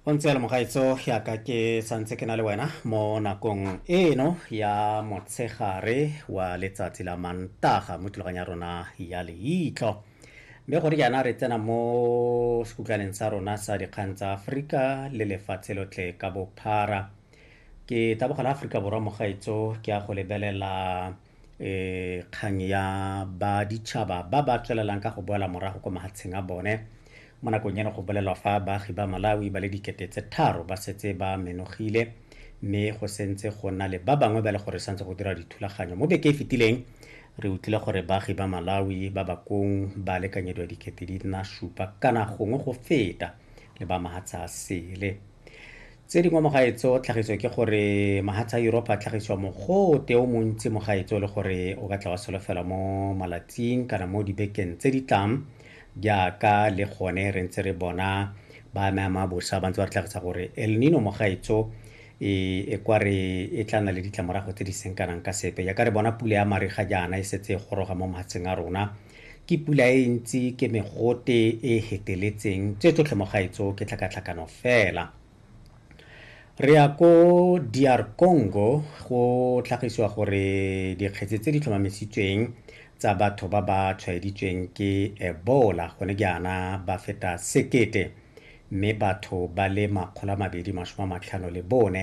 go ntse le mogaetso yaka ke santse ke na le wena mo nakong eno ya motshegare wa letsatsi la mantaga mo thulaganya rona ya leitlo mme gore jaana re tsena mo sekutlwaneng sa rona sa dikgang tsa aforika le lefatshe lotlhe ka bophara ke taboga la aforika borwa mogaetso ke ya go lebelela e, kgang ya ba ditšhaba ba ba tswelelang ka go boela morago ko mahatsheng a bone mo nakong eno go bolelwa fa baagi ba malawi ba le dikete tse tharo ba setse ba menogile mme go sentse go na le ba bangwe ba le gore santse go dira dithulaganyo mo beke e fetileng re utlwile gore baagi ba malawi ba bakong ba lekanyediwa dikete di nna supa kana gongwe go feta le ba mahatsha a sele Tse dingwe mo gae tso tlhagiso ke gore mahatsha a Yuropa a tlhagisiwa mogote o montsi mo gae tso le gore o ka tla wa solofelwa mo malatsing kana mo dibekeng tse di tlang jaaka le gone re ntse re bona ba ame ama bosa ba ntse ba re tlhagisa gore El Nino mo gae tso e, e kwa re e tla nna le ditlamorago tse di seng kanang ka sepe jaaka re bona pula ya mariga jaana e setse e goroga mo mahatsheng a rona Ke pula e ntsi, ke megote e e heteletseng, tse tsotlhe mo gaetso ke tlhakatlhakano fela. Re ya ko DR Congo go tlhagisiwa gore dikgetse tse di tlhomamisitsweng tsa batho ba ba tshwaeditsweng ke Ebola gone jaana ba feta sekete mme batho ba le makgolo a mabedi masome a matlhano le bone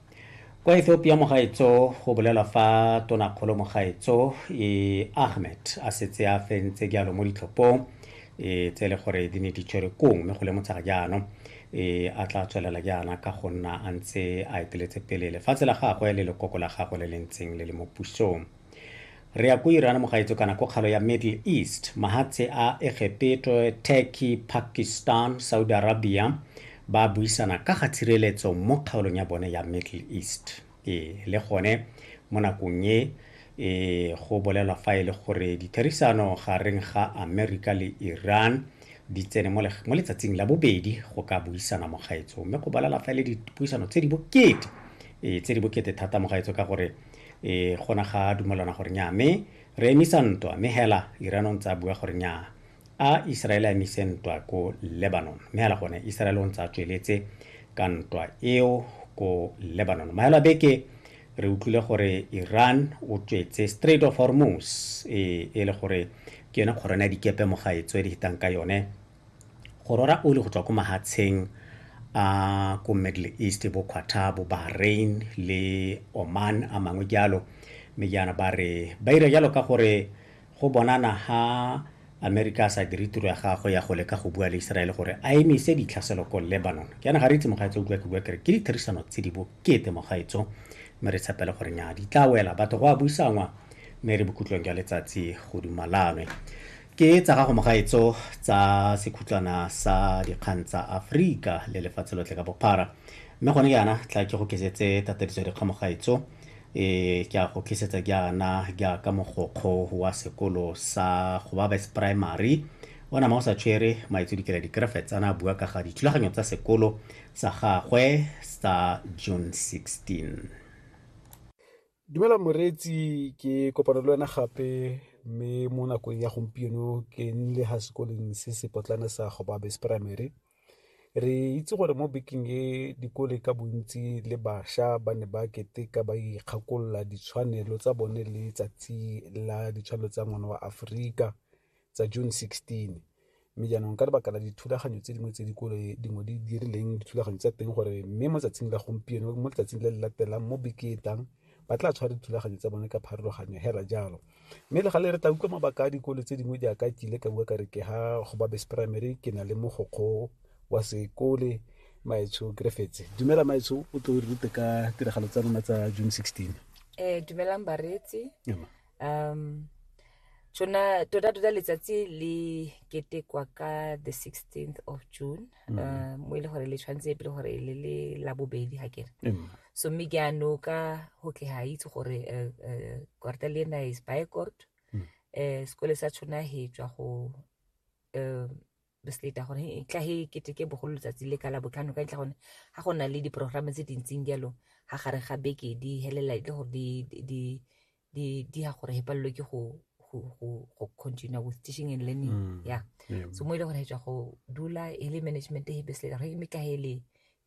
kwa ethiopia mogaetso go bolela fa tonakgolo mogaetso e ahmed a setse a fentse jalo mo ditlhophong e tse e le gore di ne di tshwere kong mme go lemotsha ga jaanong e a tla tswelela jaana ka go nna a ntse a eteletse pele lefatshe la gagwe le lekoko la gagwe le le ntseng le le mo pusong re ya ko iran mogaetso kana ko kgalo ya middle east mahatshe a egepeto turkey pakistan saudi arabia ba buisana ka ga tshireletso mo kgaolong ya bone ya middle east e le gone mo nakong e e go bolelwa fa e le gore ditherisano gareng ga amerika le iran di tsene mo letsatsing la bobedi go ka buisana mogaetso mme go bolela fa e le dipuisano tse di bokete e tse di bokete thata mogaetso ka gore e gona ga dumelana gore nya me re emisa ntwa me hela irano ntse a bua gore nya a iseraele a emise ntwa ko lebanon me hela gone iseraele o ntse a tsweletse ka ntwa eo ko lebanon maelo a beke re utlwile gore iran o tswetse straight of hormus e, e le gore ke yone kgorone ya dikepe mo ga e tswe di hitang ka yone go rora oli go tswa ko mahatsheng a ko middle east bo quatar bo bahrain le oman a mangwe jalo mme jaana ba re ba ira jalo ka gore go bonana ha amerika a sa dire tiro ya gagwe ya go leka go bua le iseraele gore a emise ditlhaselo ko lebanon jaana ga re itse mogaetso o bua ke bua kere ke ditherisano tse di bokete mogaetso mme re tshepele gore nya di tla wela batho go a buisanngwa mme re bokutlong jwa letsatsi go dumalanwe Ke tsa gago mogaetso tsa sekhutlwana sa dikgang tsa Afrika le lefatshe lotlhe ka bophara. Mme gone jaana tla ke go kesetse tatadiso ya dikgang mogaetso. E ke a go kesetsa jaana jaaka mogokgo wa sekolo sa Gobabes Primary o nama o sa tshwere maitso dikela dikrefets a na a bua ka ga dithulaganyo tsa sekolo sa gagwe sa June 16. Dumela moreetsi ke kopana le wena gape mme mo nakong ya gompieno ke nnile ga sekoleng se se potlana sa gobabes primary re itse gore mo bekeng e dikole ka bontsi le bašwa ba ne ba keteka ba ikgakolola ditshwanelo tsa bone le tsatsi la ditshwanelo tsa ngwana wa aforika tsa June 16 mme jaanong ka lebaka la dithulaganyo tse dingwe tse dikolo dingwe di dirileng dithulaganyo tsa teng gore mme mo tsatsing la gompieno mo letsatsing le le latelang mo beketang ba tla tshwara dithulaganyo tsa bone ka pharologanyo hela jalo mme le gale re tla utlwa mabaka a dikolo tse dingwe jaaka ke ile ka bua ka re ke ha go babes primary ke na le mogokgo wa sekole maetsho grefetse dumela maetsho o tlo rute ka tiragalo tsa rona tsa june 16 um eh, dumelang bareetsi um tsona tota tota letsatsi le ketekwa ka the 16th of june mm. uh, mo e le gore le tshwanetse pele gore le le la bobedi ga kere mm. so mme ke ano ka go ke ga itse gore uh, uh, korta le ena is by court mm. uh, sekole sa tshona he tswa go uh, bes leta gore e tla he keteke bogolo letsatsi le ka la botlhano ka ntlha gone ga go na le diporograme tse dintseng jalo ga gare ga beke di helela le gore di ya gore he palelwe ke go continue with teaching and learning mm, ya so mo e le gore he tswa go dula e le management he bes leta gore e meka he le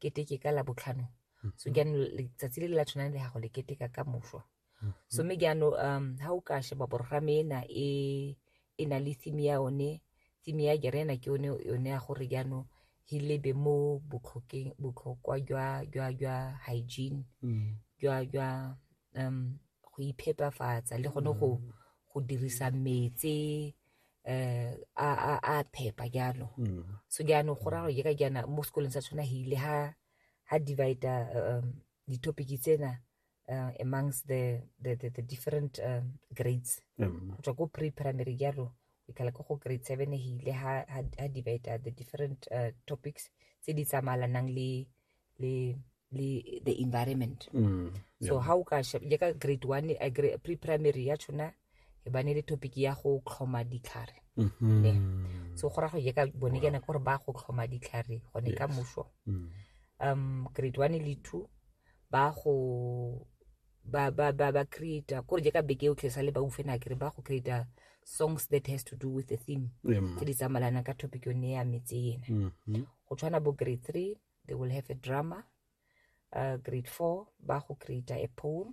keteke ka la botlhano mm-hmm. so jaanong letsatsi le le la tshwanang le gago le keteka ka moswa mhm. so mme jaano um ha o ka sheba borogame ena e e na le theme ya one theme ya jerena ke one yone ya gore jaanong he lebe mo botlhokwa jwa jwa jwa hygiene mm. jwa jwa um go iphepafatsa le gone go mm. go dirisa metse eh a a a phepa jalo mm. so jaanong go raro je ka jaana mo sekolong sa tshwana hile ha ha divider um di-topic tsena uh, amongst the, the, the, the different uh, grades go tswa ko pre-primary jalo ikala ko go grade seven e hile ha, ha, ha divider the different uh, topics tse di tsamalanang le le le the environment so how ka shep- le ka grade one a gra- pre-primary ya tshona e ba ne le topic ya go tlhoma ditlhare mm-hmm. ne so go ra go ye ka bone ke ne gore ba go tlhoma ditlhare gone ka moso mm. um grade one le two ba go ba ba ba ba create gore je ka beke o tlesa le ba ufe na kere ba go create songs that has to do with the theme tse di tsamalana ka topic yone ya metse ena mm-hmm. go tshwana bo grade three they will have a drama uh, grade four ba go create a poem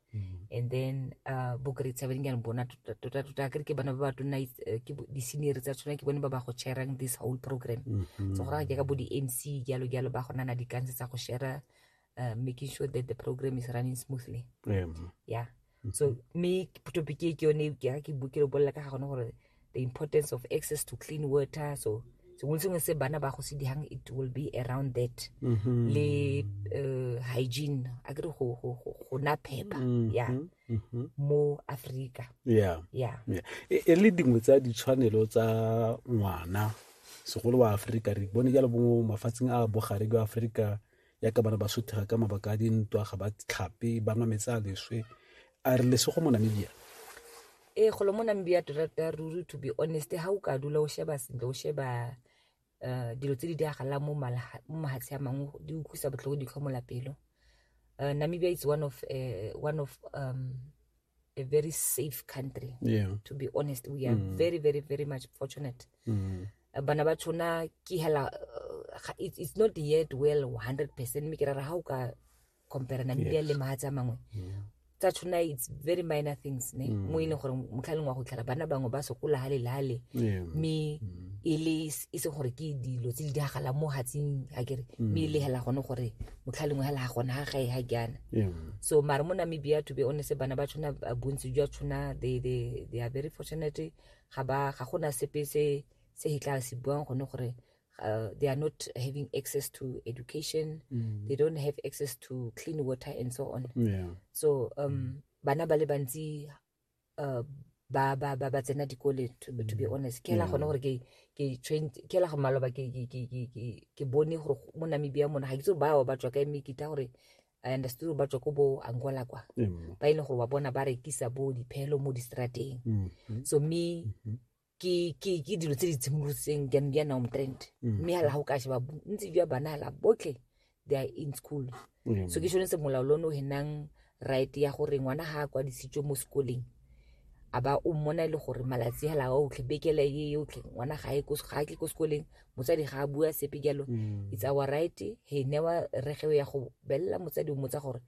Mhm. and then uh, bokeretsa ba dingane bona tota tota, tota kere ke bana ba ba tonna eh, ke bo- di-senior tsa tsona ke bone ba ba go sharang this whole program Mhm. so go raya jaaka bo di-mc jalo jalo ba go nana dikanse tsa go shara uh, making sure that the program is running smoothly Em, yeah so mme topic e ke yone ke ke bu- ke lo bolela ka ga gone gore the importance of access to clean water so sengwe sengwe se bana ba go se dihang it will be around that mm -hmm. le uh, hygiene a kere go go go na phepa mm -hmm. ya mm -hmm. mo Africa yeah yeah, yeah. E, e le dingwe tsa ditshwanelo tsa ngwana segolo wa Africa re bone jalo bongwe mafatsheng a bogare jwa Africa yaka ba re ba sothega ka mabaka a dintwa ga ba tlhape ba nwa metsi a leswe a re lesego mo namibia ee golo mo namibia tota ruri to be honest ga o ka dula o sheba sentle o sheba um dilo tse di diragalang mo mahatshe a mangwe di utlwisa botlhoko di tlhomola pelo um namibia is one of um a very safe country yeah. to be honest we are mm. very very very much fortunate mm. Eh, bana ba tshona ke hela eh, it's not yet well 100 percent mme ke rara ga o ka compare namibia le mahatsi a mangwe tsa tshona it's very minor things ne mm. mo e leng gore motlhaleng wa go tlhela bana bangwe ba sokola ga lelale mme mm. e le e se gore ke dilo tse di diragalang mo hatsing a kere mm. mme e legela gone gore motlhaleng wa la gona ga gae ga jaana so mare mo namibia to be honest bana ba tshwana bontsi jwa tshwana they, they, they are very fortunate ga ba ga gona sepe se se e tla se buang gone gore uh, they are not having access to education mm. they don't have access to clean water and so on yeah. so um, mm. bana ba le bantsi uh, ba ba ba ba tsena dikole to, to be honest ke la gone gore ke ke trained ke la go maloba ke ke ke ke ke ke bone gore mo Namibia mona ga ke tsore ba ba tswa ka me ke ta gore I understood gore ba tswa ko bo Angola kwa ba ile gore wa bona ba rekisa bo diphelo mo distrateng so me ke ke ke dilo tse di tshimolotseng di di na trend mm. mme ha la ho ka sheba ntsi jwa bana la botlhe they are in school mm. so ke shone se molao lono he nang right ya gore ngwana ha kwa disitswe mo sekoleng a ba o mmona e le gore malatsi hela o tlhe bekele ye yo tlhe ngwana ga e ko ga ke ko sekoleng motsadi ga a bua sepe jalo mm. it's our right he never re ge ya go bella motsadi o motsa gore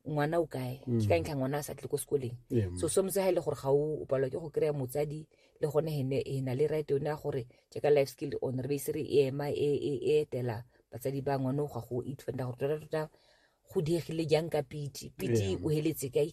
ngwana o kae mm. ke ka ntlha ngwana a sa tle ko sekoleng mm. so sometse ga e le gore ga o palwa ke go kry-a motsadi le gone ene e na le right yone ya gore jaaka life skill on re beisere e ema e, e, e etela batsadi ba ngwane o ga go itfenda gore tota tota go diegile jang ka piti piti o heletse kae